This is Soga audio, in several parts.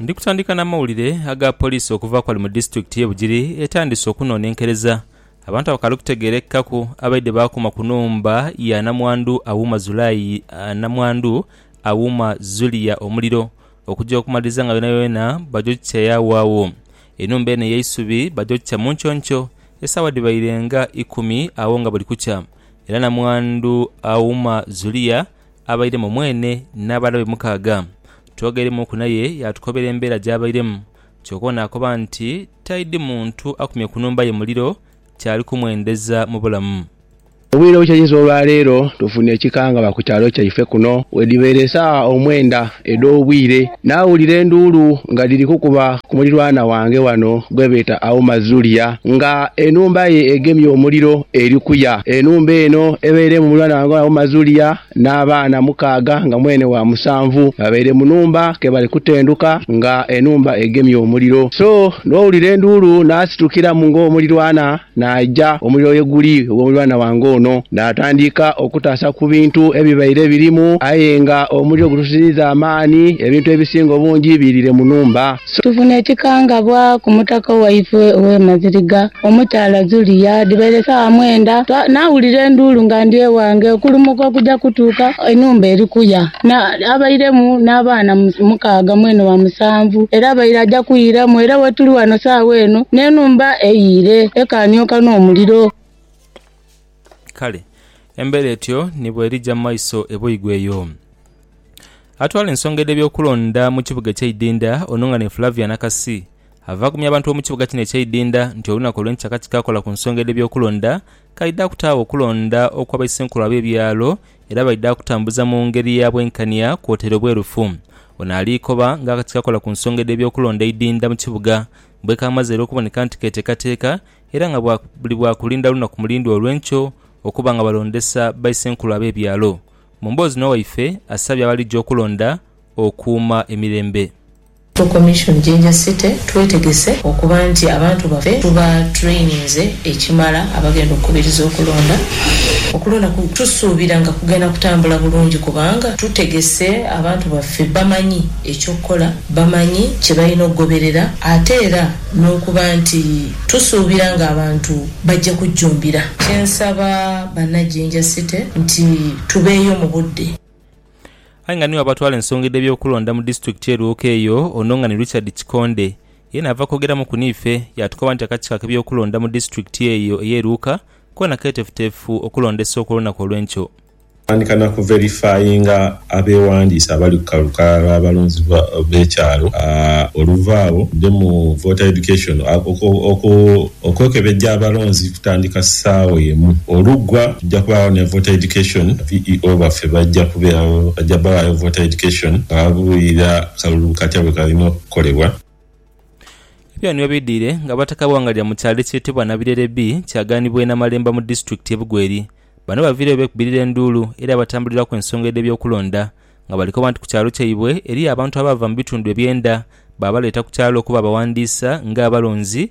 Ndi kutandika na mawulire aga poliisi okuva ku bali mu disitulikiti ye Bugiri etandise okunonenkereza abantu abakali okutegerekaku abaidhe bakuma ku nhumba ya namwandu Auma Zulayi namwandu Auma Zulia omuliro okuja okumaliriza nga yonayona baja okukikya yagho agho. Enhumba eno eyeisubi baja okukikya munkyonykyo esawa dhibaire nga ikumi agho nga buli kukya era namwandu Auma Zulia abairemu mwene n'abaghala be mukaaga. Twogereimuuku naye yaatukobera embeera gy'abairemu. Kyoka ono akoba nti taidhi muntu akumye ku nhumba ye muliro kyali kumwendeza mu bulamu. Obwire bukya inho olwaleero tufunye ekikangabwa ku kyalo kyaife kuno bwedhibaire esaawa omwenda edh'obwire. Naawulira enduulu nga dhiri kukuba ku mulirwana wange wano gwe beeta Auma Zulia, nga enhumba ye egemye omuliro eri kuya. Enhumba eno ebairemu mulirwana wange wano Auma Zulia n'abaana mukaaga nga mwene wa musanvu babaire mu nhumba ke bali kutendhuka nga enhumba egemye omuliro. So n'owulira enduulu naasitukiramu ng'omulirwana Naaja omuliro ye guli ogw'omulirwana wange ono, naatandika okutaasa ku bintu ebibaire birimu, aye nga omuliro gutusiziiza amaani, ebintu ebisinga obungi biiriire mu nhumba. Tufuna ekikangabwa ku mutaka waifwe ow'e Maziriga, omukyala Zulia. Dhibaire saawa mwenda, naawulira enduulu nga ndi ewange, okulumuka okuja kutuuka enhumba eri kuya. Abairemu n'abaana mukaaga mwene wa musanvu, era abaire aja kwiiramu. Era wetuli wano saagha eno, n'enhumba eyiire, ekaaniooka n'omuliro. Kale embeera etyo ni bw'erija mu maiso e Boigo eyo. Atwala ensonga edh'eby'okulonda mu kibuga eky'eidinda, Onunghane Flavia Nakasi, ava agumya abantu b'omu kibuga kino eky'eidinda nti olunaku olw'enkyakakyi kaakola ku nsonga edh'eby'okulonda Kaidha kutaagho okulonda okwa baisenkulo ab'ebyalo era baidha kutambuza mu ngeri ya bwenkania kwotaire obwerufu. Ono ali koba nga akati kakola ku nsonga edh'ebyokulonda eidhindha mu kibuga bwekamaze era okuboneka nti keetekateeka era nga buli bwakulinda lunaku mulindwa olw'enkyo okuba nga balondesa baisenkulo ab'ebyalo. Mu mboozi n'owaife asabye abaligya okulonda okuuma emirembe. Tu Commission Jinja City twetegese okuba nti abantu baffe tuba traininze ekimala abagenda okukubiriza okulonda. Okulonda tusuubira nga kugenda kutambula bulungi kubanga tutegese abantu baffe bamanyi eky'okukola, bamanyi kye balina okugoberera ate era n'okuba nti tusuubira ng'abantu bajja kujjumbira. Kye nsaba Bannajinja City nti tubeeyo mu budde. Aye nga ni waaba atwala ensonga edh'ebyokulonda mu disitulikiti e Lwoka eyo ono nga ni Richard Kikonde yeena ava kwogeramuku niife yaatukoba nti akakiiko ak'ebyokulonda mu disitulikiti eyo ey'e Lwoka koona keetefuteefu okulonda esooka olunaku olw'enkyo. Kutandika na ku verifyinga abeewandiisa abali ku kalukalala lw'abalonzi b'ekyalo oluvaagho nde mu Voter Education oku, Okwekebejja abalonzi kutandika saawa emu olugwa. Tujja kubaagho ne voter education. VEO baffe bajja kubeeragho. Bajja bawayo voter education nga babuulira akalulu katya bwe kalina okukolebwa. Ebyo nibyo bidhwire nga Abataka Bwangalya mu kyalo ekyetebwa Nabirere B kyagaanibwa e Namalemba mu disitulikiti ye Bugweri. Bano baviireyo beekubirira enduulu eri abatambuliraku ensonga edh'ebyokulonda nga balikoba nti ku kyalo kyaibwe eriyo abantu abaava mu bitundu ebyenda baabaleeta ku kyalo okuba abawandiisa nga abalonzi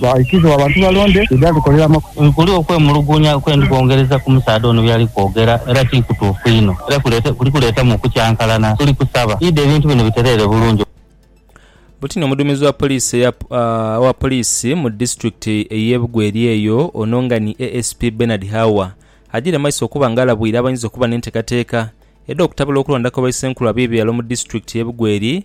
Bwaikiriza oba abantu balonde ye by'alikoleramu. Kuli okwemulugunya kwe ndi kwongereza ku musaadha ono by'ali kwogera, era ti kutuufu inho, era kuli kuleetamu okukyankalana. Tuli kusaba idi ebintu bino bitereere bulungi. Butini omuduumizi wa poliisi owa poliisi mu disitulikiti ey'e Bugo eri eyo ono nga ni ASP Bernard Hawa agiire maiso okuba nga alabwire abayinza okuba n'entekateeka edh'okutabula okulonda kwa baisenkulu ab'ebyalo mu disitulikiti y'e Bugo eri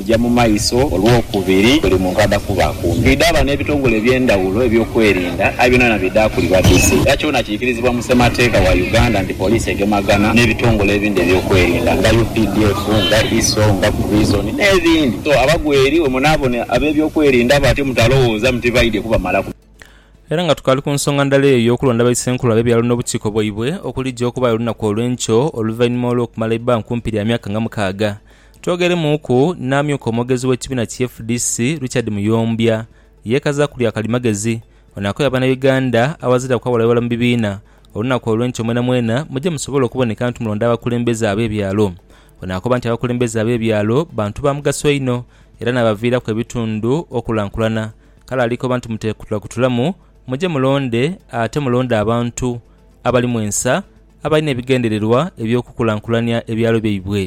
Eja mu maiso olwokubiri buli muntu adha kuba akumye. Twidhaba n'ebitongole eby'endhawulo eby'okwerinda aye byonabyona bidha kuli badhusi era kyona kiikirizibwa mu Ssemateeka wa Uganda nti poliisi egemagana n'ebitongole ebindi eby'okwerinda nga updf, nga ISO, nga Prison n'ebindi so abagwa eri bwemunaabona ab'ebyokwerinda batyo mutalowooza muti baidhye kubamalaku. Era nga tukaali ku nsonga ndala eyo ey'okulonda ba Isenkulu ab'ebyalo n'obukiiko bwaibwe okulija okubaayo olunaku olw'enkyo oluvainhuma olw'okumala eibbanga kumpi lya myaka nga mukaaga Twogeremuuku n'amyuka omwogezi w'ekibiina ki fdc, Richard Muyombya yeekaza ku lya kalimagezi. Ono akoya Bannayuganda awaziraku awolawolera mu bibiina olunaku olw'enkya omwenamwena muje musobole okuboneka nti mulonda abakulembeze ab'ebyalo. Ono akoba nti abakulembeze ab'ebyalo bantu ba mugaso inho era n'abaviiraku ebitundu okulankulana kale alikoba nti muteekutulakutulamu muje mulonde ate mulonde abantu abalimu ensa abalina ebigendererwa eby'okukulankulania ebyalo byaibwe.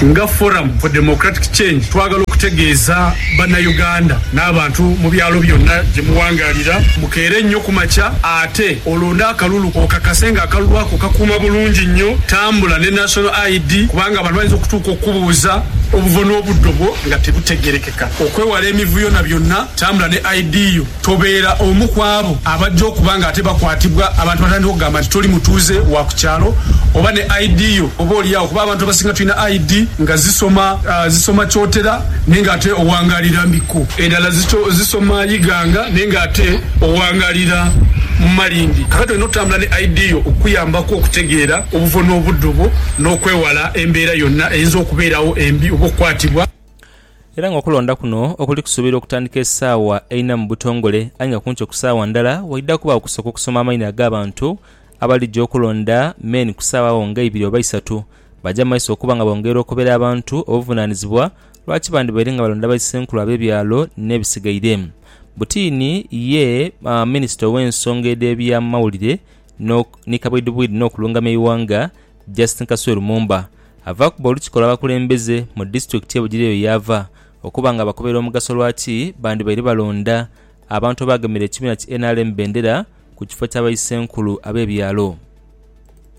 Nga Forum for Democratic Change twagala okutegeeza Bannayuganda n'abantu mu byalo byonna gye muwangaalira mukeere nnyo ku makya ate olonde akalulu okakase ng'akalulu ako kakuuma bulungi nnyo tambula ne National ID kubanga abantu bayinza okutuuka okukubuuza obuvo n'obuddo bwo nga tebutegeerekeka. Okwewala emivuyo na byonna, tambula ne ID yo. Tobeera omu ku abo abajja okuba nga ate bakwatibwa abantu batandika okugamba nti toli mutuuze wa ku kyalo oba ne ID yo oboolyawo kuba abantu abasinga tulina ID nga zisoma zisoma Kyotera naye ng'ate owangaalira Mbikko, endala zisoma Iganga naye ng'ate owangaalira mu Malindi. Kaakati olina okutambula ne ID yo okukuyambako okutegeera obuvvo n'obuddo bwo n'okwewala embeera yonna eyinza okubeerawo embi oba okukwatibwa. Era nga okulonda kuno okuli kusuubirwa okutandika esaawa eina mu butongole aye nga kunkyo ku saawa ndala waidha kubagho okusooka okusoma amaina agabantu abalija okulonda men ku saawa agho nga eibiri oba isatu baja mu maiso okuba nga bongerera okobera abantu obuvunanizibwa lwaki bandibaire nga balonda ba isenkulu abe byalo ne bisigaire butini ye minisita owe nsonga edhe bya mawulire ni kabwidhibwidhi no kulungamya eighanga Justine Kasule Lumumba avaaku b'Olukiko lw'Abakulembeze mu disitulikiti y'e Bugiri eyo yaava okuba nga abakubira omugaso lwaki bandibaire balonda abantu abaagemera ekibiina ki nrm bendera ku kifo kya Baisenkulu ab'ebyalo.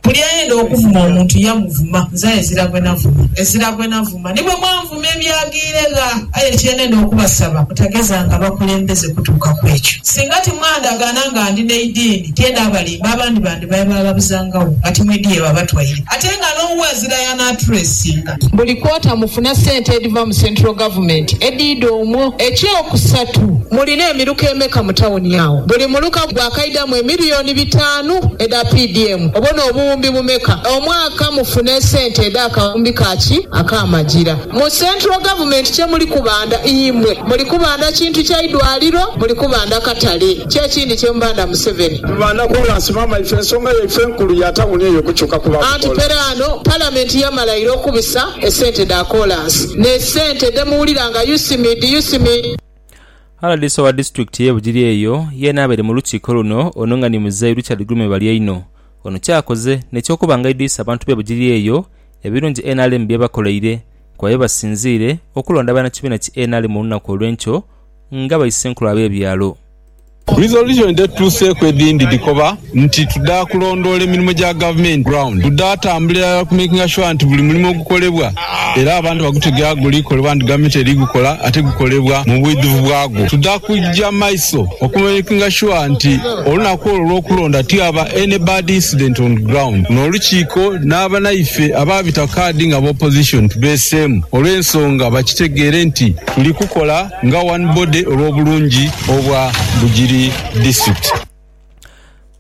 Buli ayenda okuvuma omuntu yamuvuma, nze aye ezira gwe navuma, ezira gwe navuma ni bwe mwanvuma. Muuma ebyaghaire gha. Aye kye ndenda okubasaba, mutagezanga bakulembeze kutuuka ku ekyo. Singa timwandagaana nga ndi n'eidiini, tienda abalimba, abandi bandibaire baaghabuzangagho bati, Mwidhi ye babatwaire? Ate nga n'owo azira y'anaatureesinga. Buli kwota mufuna sente edhiva mu Central Government edhiidha omwo. Eky'okusatu, mulina emiruka emeka mu tawuni agho? Buli muruka gwakaidhamu emiliyoni bitaanu edha PDM. Obwo n'obuwumbi bumeka omwaka? ka mufune esente edha kawumbi ka ki akamagira mu central government kye muli kubanda imwe muli kubanda kintu kya idwaliro muli kubanda katale kyekindi kye mubanda museveni. Tubanda kolansi maama ife ensonga yaife enkulu ya tawuni eyo kukyuka kuba Anti bukola. peraano parliament yamala ira okubisa esente dha kolansi ne sente dhe muwulira nga UCMID UCMID. Rdc owa disitulikiti ye Bugiri eyo yeena abaire mu lukiiko luno ono nga ni muzeeyi Richard Gulume Balyaino Ono kyakoze n'eky'okuba nga aidhwisa abantu be Bugiri eyo ebirungi nrm by'ebakoleire kuba ye basinziire okulonda bannakibiina ki nrm olunaku olw'enkyo nga baisenkulu ab'ebyalo. Resolution dhetutuuseeku edhindi dhikoba nti tuda kulondoola emirimo gya gavumenti ground, tuda tambula irala ku makinga sure nti buli mulimo ogukolebwa, Era abantu bagutegera guli kolebwa nti gavumenti eri gukola ate gukolebwa mu bwidhuvu bwagwo. Tuda kuja maiso okumakinga sure nti olunaku olwo olwokulonda tihaba any bad incident on ground. Luno olukiiko n'abanaife abaabita kaadi nga b'opposition tubeeseemu olw'ensonga bakitegeere nti tuli kukola nga one body olw'obulungi obwa Bugiri district.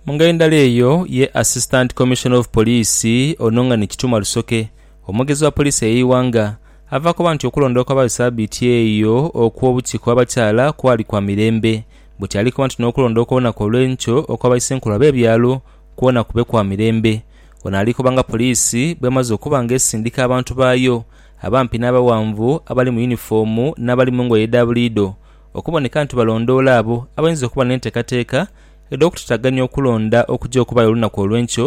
Mungeri ndala eyo ye Assistant Commissioner of Police ono nga ni Kituma Rusoke Omwogezi wa poliisi ey'eighanga ava koba nti okulonda okwabaayo sabiiti eyo okw'obukiiko bw'abakyala kwali kwa mirembe, bwetyo ali koba nti n'okulonda okw'olunaku olw'enkyo okwa baisenkulo ab'ebyalo kwona kube kwa mirembe. Ono ali koba nga poliisi bw'emaze okuba nga esindika abantu baayo abampi n'abaghanvu, abali mu yunifoomu n'abali mu ngoye edha buliidho okuboneka nti balondoola abo abainza okuba n'enteekateeka edh'okutataganya okulonda okuja okubaayo olunaku olw'enkyo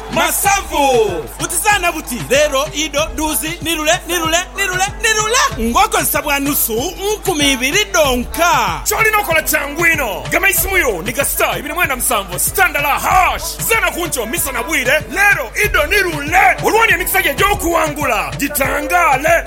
Masavu! Butizaana buti, leero, ido, duuzi, ni lule, ni lule, ni lule, ni lule! Ng'okozesa bwa nusu nkumi ibiri dhonka. Ky'olina okola kyangu inho. Gema eisimu yo ni ga star ibiri mwenda musanvu star ndala hash. Zaana ku nkyo, misana, bwire, leero, ido, ni lule! Olwo ni emikisa gyo egy'okuwangula gitangaale!